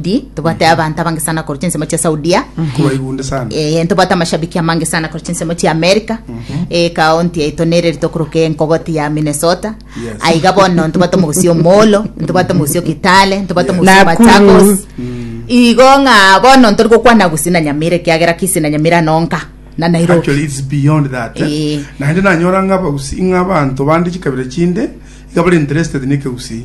Di, tobwate abanto abange sana korwa chinsemo chia saudia Kubaibunde sana. Eh, ntobwate amashabiki amange sana korwa chinsemo chia america Eh, kaonti yaito nere rito koroka enkogoti ya minnesota Yes. aiga bono ntobwate omogosi omolo ntobwate omogosi okitale ntobwate omogosi Nakuru. machagos igo ng'a bono ntori gokwana gusii na nyamira ekiagera kisi na nyamira nonka na nairobi Actually, it's beyond that. eh. Eh. Naende nanyora ng'a abausi- ng'a abanto bande chikabira chinde iga bari interested nekegusii.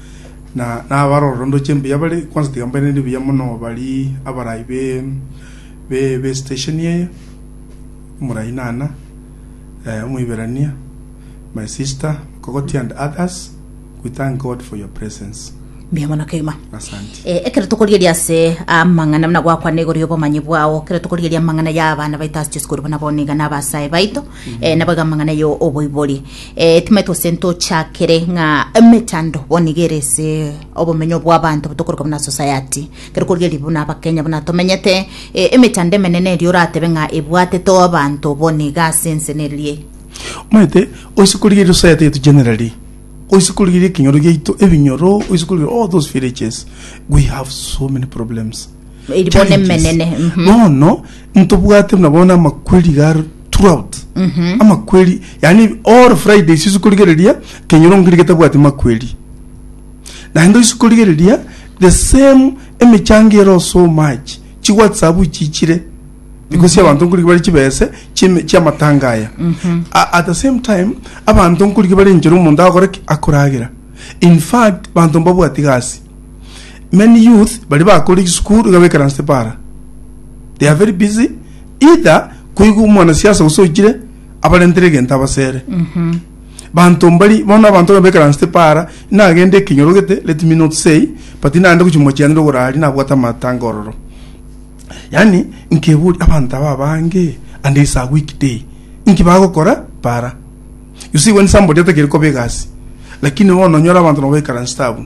na nabarorere ndoche mbuya bare, kwansa tiga mbairanerie buya mono bari abarai be be be station eye, omorai nana, eh, omoiberania, my sister, Mogogoti and others, we thank God for your presence. mbuya mono kegima Asante. Eh, ekero tokorigeria ase amang'ana buna gwakwana igoro y'obomanyi bwao ekero tokorigeria amang'ana y'abana baito ase chisukuru buna bono iga na abasae baito eh, nabo iga amang'ana yo oboibori Eh, time tose ntochakere ng'a emetando bono nigo ere ase obomenyo bw'abanto botokoreka buna society kero kori eri buna abakenya buna tomenyete eh, emetando emenene erio oratebe ng'a ebwatete abanto bono iga ase ense nerie omanyete oise korigeria society yetu generally oise korigeria ekenyoro giaito ebinyoro oise korigeria all those villages we have so many problems Eri bono Challenges. emenene, mhm. bono ntobwate buna bono amakweri garo throughout amakweri yani all friday sisi korigereria kenyoro ngiri getabwati makweri naende isi korigereria the same emechango ero so much chi whatsapp chichire because abantu nkorigi bari chibese chime- chiamatanga aya A- at the same time abantu nkorigi bari enchera omonto agokora ki akoragera in fact banto mbabwati gasi Many youth baria bakore chisukuru iga baikaransete para. They are very busy either koigwa omwana siasa gose ochire abarentere egento abasere. Banto mbari bono abanto iga baikaransete para nagende ekinyorogete let me not say but naende gochia mochie angire ogoraria nabwate amatanga ororo. Yaani nkeburia abanto aba abange and it's a week day inki bagokora para. You see when somebody atakeri koba egasi lakini bono onyore abanto nabo baikaransete abwo.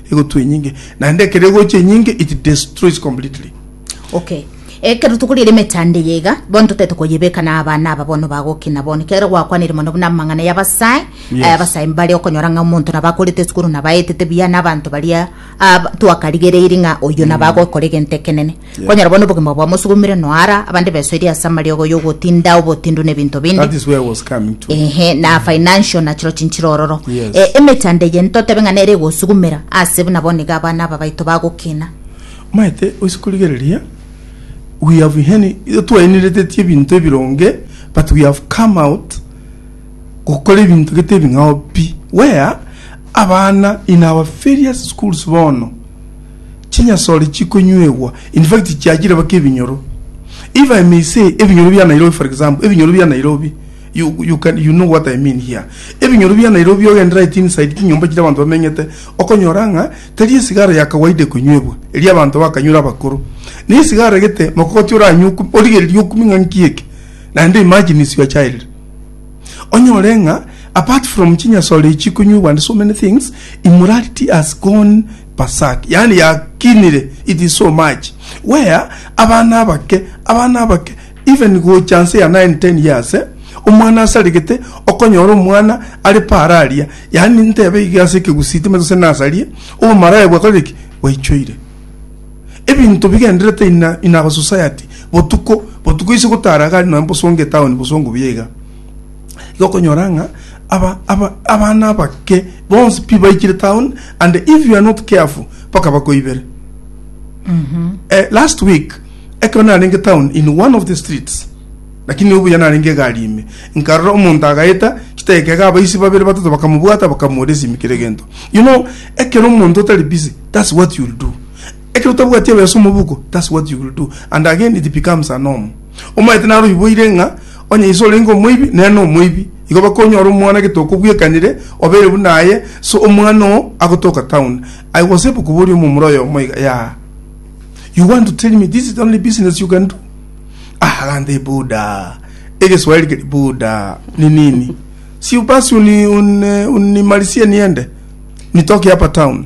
Egotwa enyinge, naende ekero egocha enyinge it destroys completely. Okay. Ekero tokorire emechando eye iga, bono totete koyebeka na abana aba bono bagokina bono. Ekiagera gwakwanire mono buna amang'ana y'abasae, Yes. eh, abasae mbare okonyora ng'a omonto nabo akorete esukuru nabo aetete buya na abanto baria ab- twakarigereiri ng'a oyo nabo agokora egento ekenene. Yeah. kwanyora bono obogima bwao mosugumire noara abande besoirie ase amariogo y'ogotinda obotindu na ebinto binde That is where I was coming to. ehe na financial na chiro chinchiro ororo Yes. Eh, emechando eye ntotebe ng'a nere egosugumera ase buna bono iga abana aba baito bagokina maete oise korigereria we have heni twaeneretetie ebinto ebironge but we have come out gokora ebinto gete ebing'ao pi where abana in our various schools bono chinyasore chikonywegwa, in fact chiachire mpaka ebinyoro. If I may say ebinyoro bia Nairobi for example, ebinyoro bia Nairobi, you, you, can, you know what I mean here. Ebinyoro bia Nairobi ogende right inside chinyomba chiria abanto bamenyete, okonyora ng'a tari esigara ya kawaida ekonywegwa, eria abanto bakanywera abakoro. Ne esigara egete mogogoti oranywe oku, origereria okumi ng'a nki eke? Naende imagine is your child. Onyore ng'a apart from chinyasore echi chikonywegwa and so many things, immorality has gone Pasaka, yaani yakinire, it is so much where abana abake, abana abake even gocha nse ya nine ten years eh, omwana asaregete okonyora omwana are paara aria, yaani ntebe iga ase ekegusii timanyete gose nasarie, obomaraya bwakorire ki? bwaichoire ebinto bigenderete in a, in our society botuko botuko ise gotara gari nonya bosongo etown bosongo buya iga. Igo okonyora ng'a aba aba abana abake bonsi pi baikire town and if you are not careful mpaka bakoibere. Eh, last week ekero narenge town in one of the streets lakini obuya narenge egari ime nkarora omonto agaeta chiteka iga abaisi babere batato bakamobwata bakamoria esimi kera egento you know ekero omonto otari busy that's what you'll do Ekero otabwati ebeesa omo obuko, that's what you will do and again it becomes a norm. Omaete naro oyiboire ng'a onye ise orenge omoibi, nere nomoibi, igo baka onyore omwana gete okobwekanire, obeire buna aye, so omwana oo agotoka town. I was able koboria omomura oyomo iga, yeah, you want to tell me this is the only business you can do? Ah, agantebia, Buda, egeswahili keri Buda ni nini? Si basi uni, uni, unimalisie niende, nitoke hapa town.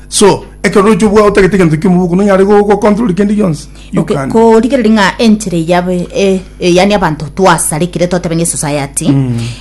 So, ekero oroche obwao otagete egento kimo boka nonyare go go control kende gionsi. You Okay, can. korigereria ng'a enchera eyabe e- e- yaani abanto twasarekire totebe ng'a esociety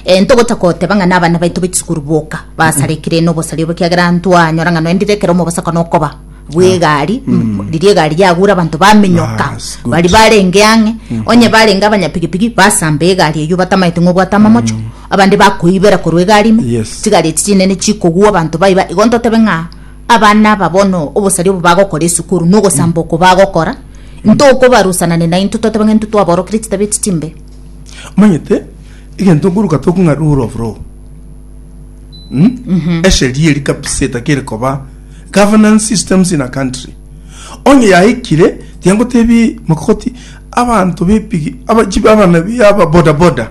eh, ntogocha koteba ng'a nabana baito bachisukuru boka basarekire nobosari obo kiagera ntwanyora ng'a noendire ekero omobosako nokoba bw'egari m- riria egari yagure abanto bamenyoka Bas, good. bari barenge ang'e onye barenge abanyapigipigi basamba egari eyio batamaete ng'a obwate amamocho Abande bakoibera korwa egari ime, Yes. chigari echi chinene chikogwa abanto baiba, igo ntotebe ng'a abana aba bono obosari obo bagokora esukuru na ogosamba oko bagokora ntokobarusanane naintwe totebe ng'a intwe twaborokire chitabia echi chimbe. omanyete egento nkoruka toku ng'a rule of law Hmm? esheria eri kabisa etakere koba governance systems in a country onye yaikire tiangotebi makoti abanto bepigi aba- chibi- abana bi- aba bodaboda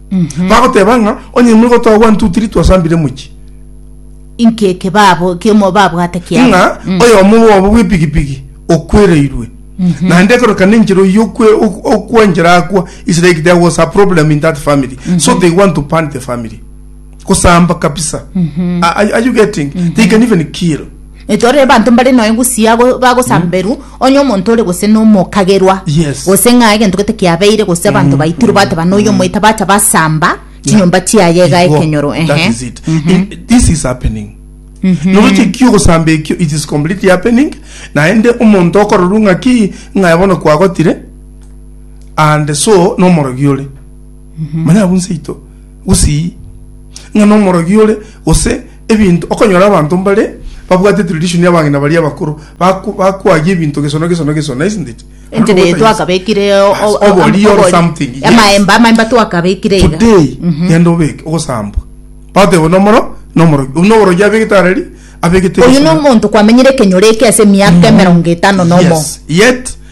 bagoteba ng'a onye nigo twa one two three twasambire mochie inki eke babo kimo babwate kiabo ng'a Mm. oyomo bwabo bw'epigipigi okwereirwe naende ekorokana enchera oyio okwe- ok- okwanchera akwa is like there was a problem in that family so they want to burn the family gosamba kabisa A- are, are you getting they can even kill Etwarire abanto mbare noe gusii bagosamberwa onye omonto ore gose nomokagerwa Yes. gose ng'a egento gete kiabeire gose abanto baitirwe bateba noyo omoita bacha basamba chinyomba chiaye iga Igo, ekenyoro that ehe. is it. It- this is happening noroche ki ogosamba ekio it is completely happening naende omonto okororwa ng'a ki ng'aye bono kwagotire and so nomorogi ore manya abwo nseito gusii ng'a nomorogi ore gose Ebinto, okonyora abanto mbare babwate tradition ya abang'ina baria abakoro, baku bakuagia ebinto geso na geso na geso, nice indeed? Naende Entebe eye ogotainsa. twakabekire o- Yes, o- obori or obori. something, yes. Amaemba, amaemba twakabekire iga. today genda obeke ogosambwa bateba nomoro nomorogi obu noborogi abegete areri abegete Oyu geso na- nomonto kwamenyire ekenyoro eke ase emiaka emerongo etano nomo. Yes, yet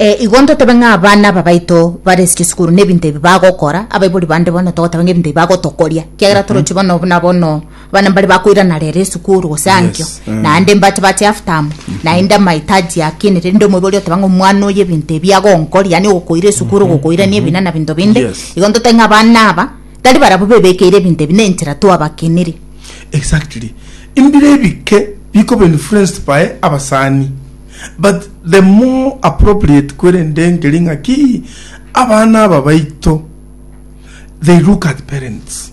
Eh, igo ntotebe ng'a abana aba baito bare ase chisukuru na ebinto ebi bagokora abaibori bande bono togoteba ng'a ebinto ebi bagotokoria kiagera torochi bono buna bono abana mbare bakoirana rero esukuru gose ankio Yes, eh. naende mbache bache half term naende amahitaji akine rende omoibori oteba ng'a omwana oyo ebinto ebi agonkoria yaani ogokoira esukuru ogokoirania ebina na binto binde Yes. igo ntotebe ng'a abana aba tari barabwo bebekeire ebinto ebi na enchera twabakiniri exactly mbire ebike bikoba influenced by abasani But the more appropriate kwerende nkeri ng'a ki abana aba baito they look at parents.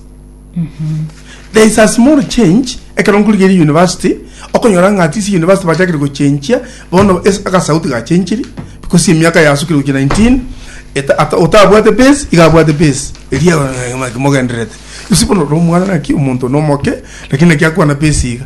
There is a small change ekero nkorigeria university okonyora ng'a at least university bachakire gochenchia bono es- agasauti gachenchiri because emiaka yasukire gochia 19 eta- ata- otabwate base iga abwate base eria mogendererete. You see bono oro omwana ng'aki omonto nomoke lakini naki akwana base iga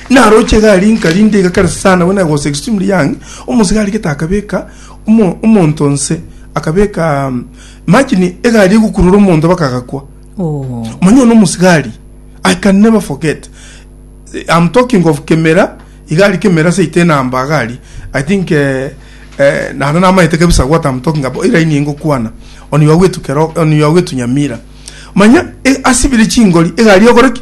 Naroche egari inka rinde iga kare sana when I was extremely young omosege arigete akabeka omo, omonto nse akabeka um, imagine egari egukurura omonto baka agakwa Oh. manya ono omosigari i can never forget Eh, i'm talking of kemera igari kemera seite enamba agari i think eh, eh, naro namaete kabisa what i'm talking about iraini engokwana on your way to Kero- on your way to nyamira manya eh, asibire chingori egari ogoreki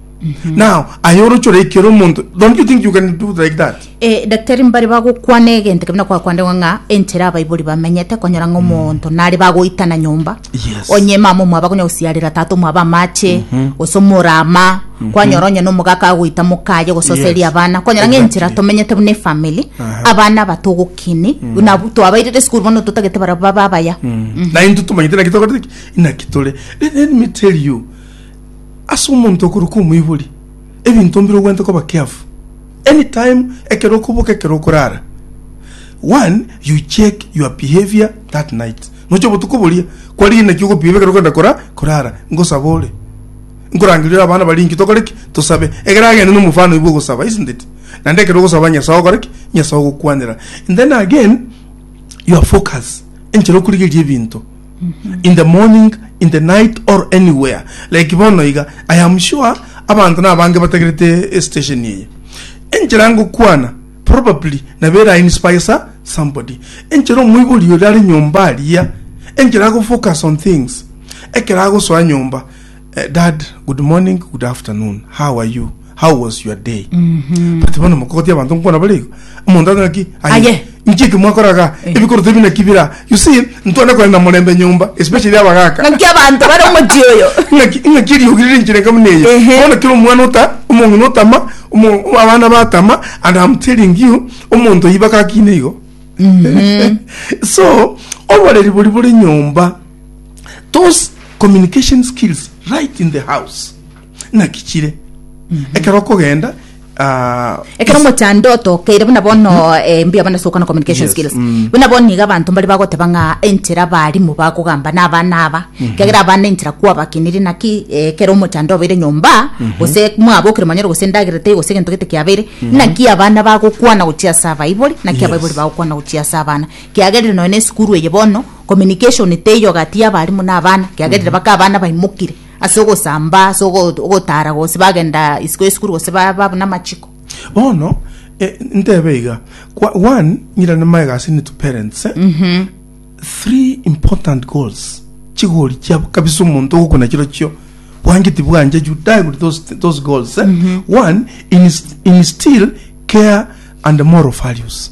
now aye oroche oraikera omonto don't you think you can do like that Eh, daktari mbare bagokwana egento kebina kwakwandengwa ng'a enchera abaibori bamenyete konyora ng'a omonto nare bagoitana nyomba Yes. onye mama omwaba konya gosiarera tata omwaba amache gose omorama kwanyora onye nomogaka agoita mokaye gososeria Yes. abana kwanyora ng'a enchera Exactly. tomenyete buna efamily abana batogokini buna twabairire esukuru bono totagete bara baba abaya na into tumanyete naki togotiki inaki tore let, let me tell you ase omonto okorokwa omoibori, ebinto mbire ogwenerete koba careful any time ekero okoboka ekero okorara one you check your behaviour that night noche obotuko boria kwarire naki ogo behave ekero okogenda kora korara ngosabe ore nkorangeria ore abana bari inki tokore ki tosabe egere agende na omofano oye bwa ogosaba isn't it? Naende ekero ogosaba Nyasae ogokora ki Nyasae ogokwanera and then again your focus enchera okorigereria ebinto. in the morning, in the night or anywhere like bono iga, I am sure abanto nabange batagerete station eye. Enchera ngokwana probably nabo era inspires somebody. Enchera omoibori oria are nyomba aria, enchera ago focus on things ekero agosoa nyomba, Eh, dad good morning good afternoon how are you how was your day but bono mokoti abanto nkona barego omonto ataki Aye. nchiki mwakoraga Eh. ebikoroto ebi nakibira you see ntwana kore na morembe nyomba especially abagaka ngaki abanto bare omochi oyo ngakiriogirire nchire nka buna eyo Ehe. bono kero omwana ota omong'ina otama omo- abana batama and am telling you omonto oyi bakakina igo so oboreri bori bore nyomba those communication skills right in the house naki chire mm -hmm. ekero okogenda Ah, ekero mochando otokeire buna bono mm-hmm. eh, mbuya bana soka na communication skills mm. buna bono iga abanto mbari bagoteba ng'a enchera abarimu bagogamba na abana aba mm-hmm. kegera abana enchera kwabakinire naki eh, ekero omochando obeire nyomba mm-hmm. gose mwabokire manyoro gose endagera tei gose egento gete kiabeire naki abana bagokwana gochia ase abaibori naki abaibori bagokwana gochia ase abana kiagerire nonya na esukuru eye bono communication teiyo gati y'abarimu na abana kiagerire baka abana baimokire ase ogosamba ase ogo- ogotara gose bagenda isiko esukuru gose ba- ba buna amachiko bono eh, ntebe iga Kwa- one nyira nemaye gasi into parents eh? Mhm. three important goals chigori chiabo kabisa omonto ogokuna chiro chio bwangeti bwanje you die with those, those goals eh? one inst- instill care and moral values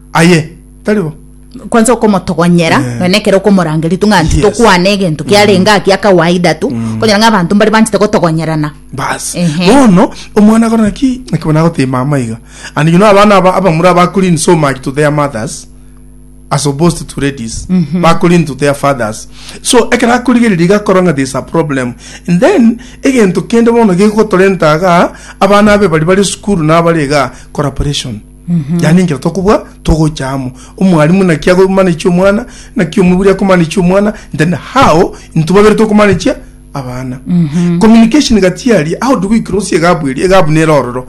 Aye, tari bo. kwansa okomotogonyera Eh. nonya ekero okomorangeria tu ng'a Yes. tokwana egento kiarenge aa kia kawaida tu okonyora ng'a abanto mbare banchete gotogonyerana basi Ehe. bono omwana agora naki naki bono agotee mama iga and you know abana aba abamura abakulini so much to their mothers as opposed to ladies bakulini to their fathers so ekero akorigereria iga akora ng'a there is a problem and then egento kende bono gegotorenta iga abana abe bari bare esukuru nabare iga collaboration yaani enchera tokobua togocha amo omwalimu naki agomanechia omwana naki omoburi akomanechia omwana then how intwe babere tokomanechia abana communication gati aria how do we cross egabu eria egabu nere ororo